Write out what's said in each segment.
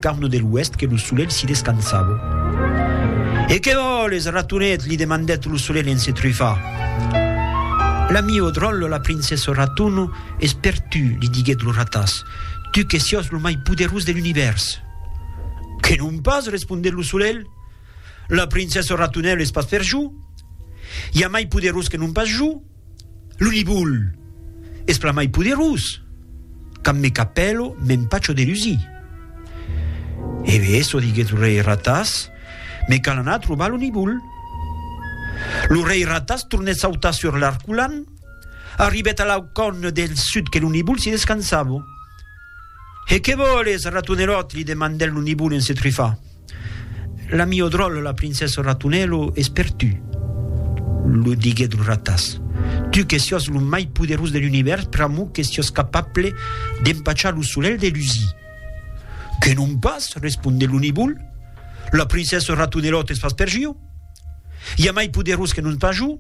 Carn de l'Oèst que lo solelh s'i descansava. E qué vòles, ratonet? li demandèt lo solelh en se trufar. La mieu dròlle, la princessa Raton, es per tu, li diguèt lo ratàs, tu que siòs lo mai poderós de l'univèrs. Que non pas, respondèt lo solelh, la princessa Ratonèl es pas per jo. I a mai poderós que non pas jo. Lo libul es plan mai poderós, quand me capèlo m'empacho de lusi. E be eso, diguèt lo rei Ratas, me cal anar trobar lo libul. Lo rei Ratas tornèt sautar sur l'arculan, arribèt a l'aucòn del sud que lo libul s'i descansavo. E que vòles, ratonelòt? li demandèt lo libul en se trufar. La miò dròlle, la princessa Ratunèlo, es per tu, lo diguèt lo ratàs. Tu que siòs lo mai poderós de l'univèrs, pr'amor que siòs capable d'empachar lo solelh de lusir. Que non pas, responde lo nivol, la princessa Ratunelòt es pas per jo. I a mai poderós que non pas jo?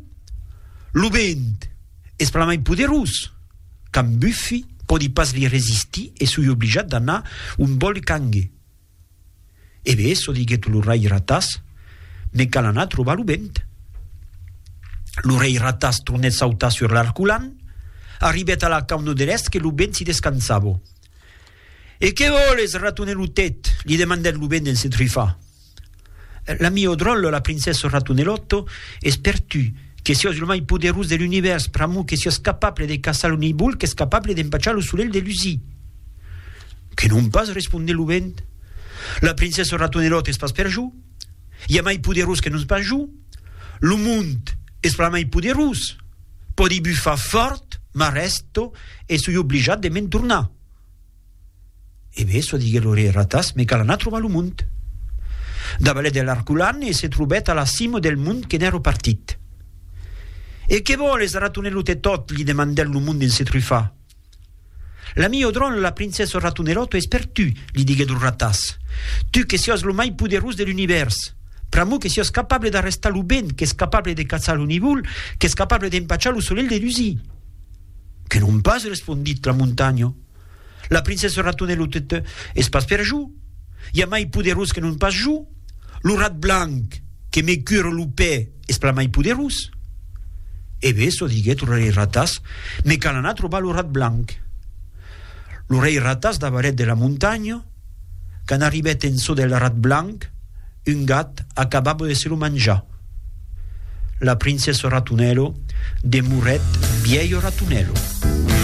Lo vent es plan mai poderós! Can Bufi pòdi pas li resistir e soi oblijat d'anar ont vòl Cangue. E be, çò diguèt lo rei Ratàs, me cal anar trobar lo vent. Lo rei Ratàs tornèt sautar sur l'arculan, arribèt a la cauna de l'èst que lo vent s'i descansava. E qué vòles, ratonelutet? li demandèt lo vent en se trifar. L'ami au dròlle, la princesse Ratonelòto, es per tu, que siás lo mai poderós de l'univèrs, pr'amor que siás capable de caçar lo nibol qu'es capable d'empachar lo solelh de lusir. Que non pas, responde lo vent. La princesse Ratonelòto es pas per jo. I a mai poderós que non pas jo. Lo mond es pas mai poderós. Pòdi bufar fòrt, m'arrèsto e soi oblijat de me'n tornar. E bé, çò diguèt lo rei Ratas, me cal anar trobar lo mond. Davalèt de l'arculan e se trobèt a la cima del mond que n'èra partit. E qué vòles, ratonelot e tot? li demandèt lo mond en se trufar. La mieu dron, la princessa Ratonelot, es per tu, li diguèt lo Ratas. Tu que siás lo mai poderós de l'univèrs. Pr'amor que siás capable d'arrestar lo vent, qu'es capable de caçar lo nivol, qu'es capable d'empachar lo solelh de dusir. Que non pas, respondit la montanha. La princessa Ratonel o tete es pas per jo, i a mai poderós que non pas jo, lo rat blanc que me cure lo pè es plan mai poderós. E bé, çò diguèt lo rei Ratas, me cal anar trobar lo rat blanc. Lo rei Ratas davarèt de la montanha, quand arribèt en çò del rat blanc, un gat acabava de se lo manjar. La princessa Ratonelo demorèt bièlho Ratonelo.